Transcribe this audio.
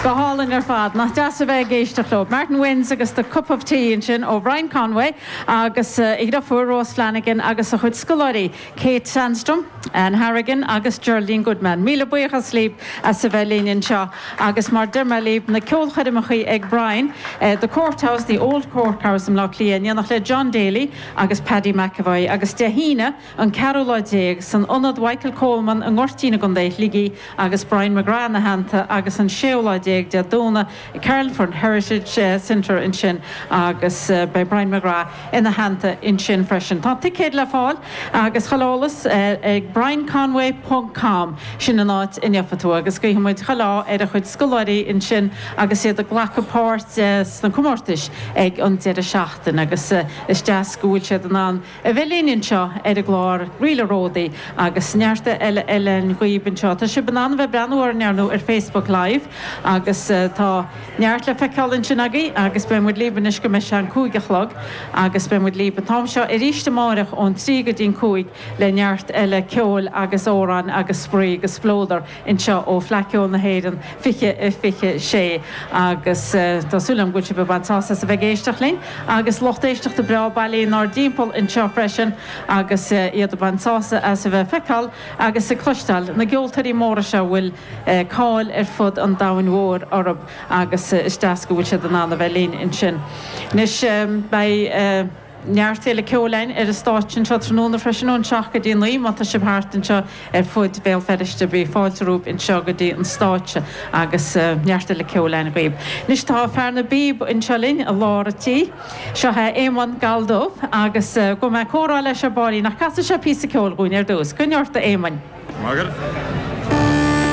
Go hálainn ar fad. Nach deas a bheith ag éisteacht leo. Martin Wynne's agus The Cup of Tea ansin ó Brian Conway agus a dheirfiúr Rose Flanagan agus a chuid scoláirí, Kate Sandstrom, Anne Harrigan agus Geraldine Goodman. Míle buíochas libh as a bheith linn anseo agus mar a deir mé libh, na ceolchoirmeachaí ag Brian, The Court House, The Old Court House i mBleá Cliath in éineacht le John Daly agus Paddy McEvoy agus Dé hAoine, an ceathrú lá déag in Ionad Mhichael Coleman i nGoirtín i gContae Shligigh agus Brian McGrath ina theannta agus an séú lá déag Dé Domhnaigh i Carlingford Heritage Centre ansin agus beidh Brian McGrath ina theannta ansin freisin. Tá ticéid le fáil agus chuile eolas ag brianconway ponc com sin an áit a ngabhfaidh tú agus guífidh muid chuile ádh ar a chuid scoláirí ansin agus iad ag glacadh páirt sna comórtais ag an deireadh seachtaine agus is deas go bhfuil siad in ann A bheith linn anseo ar an gclár Ríleanna is Ródaí agus neart eile ar an gclár anseo. Tá sibh in ann a bheith ag breathnú orainn ar ndóigh ar Facebook Live agus tá neart le feiceáil ansin agaibh agus beidh muid libh anois go mbeidh sé an cúig a chlog agus beidh muid libh an t-am seo arís amáireach ón trí go dtí an cúig le neart eile ceoil agus amhráin agus spraoi agus spleodar. anseo ó Fhleadh Cheoil na hÉireann 2026 agus tá súil agam go bhfuil sibh ag baint sásamh as a bheith ag éisteacht linn agus lucht éisteachta breá bailithe inár dtimpeall anseo freisin agus iad ag baint sásamh as a bheith ag feiceáil agus ag cloisteáil na gceoltóirí móra seo a bhfuil cáil ar fud an domhain mhóir orthu agus is deas go bhfuil siad in ann a bheith linn ansin. Anois beidh. Neart eile ceoil ar an stáitse anseo tráthnóna freisin ón seacht go dtí a naoi. Má tá sibh thart anseo ar fud Bhéal Feirste beidh fáilte romhaibh anseo go dtí an stáitse agus neart eile ceoil agaibh. Anois tá fear na bpíob anseo linn i lár an tí. Seo é Éamonn Galldubh agus gabhfaidh muid ag comhrá leis ar ball. Ach casfaidh sé píosa ceoil dhúinn ar dtús? Coinnigh ort a Éamoinn. Maith agat.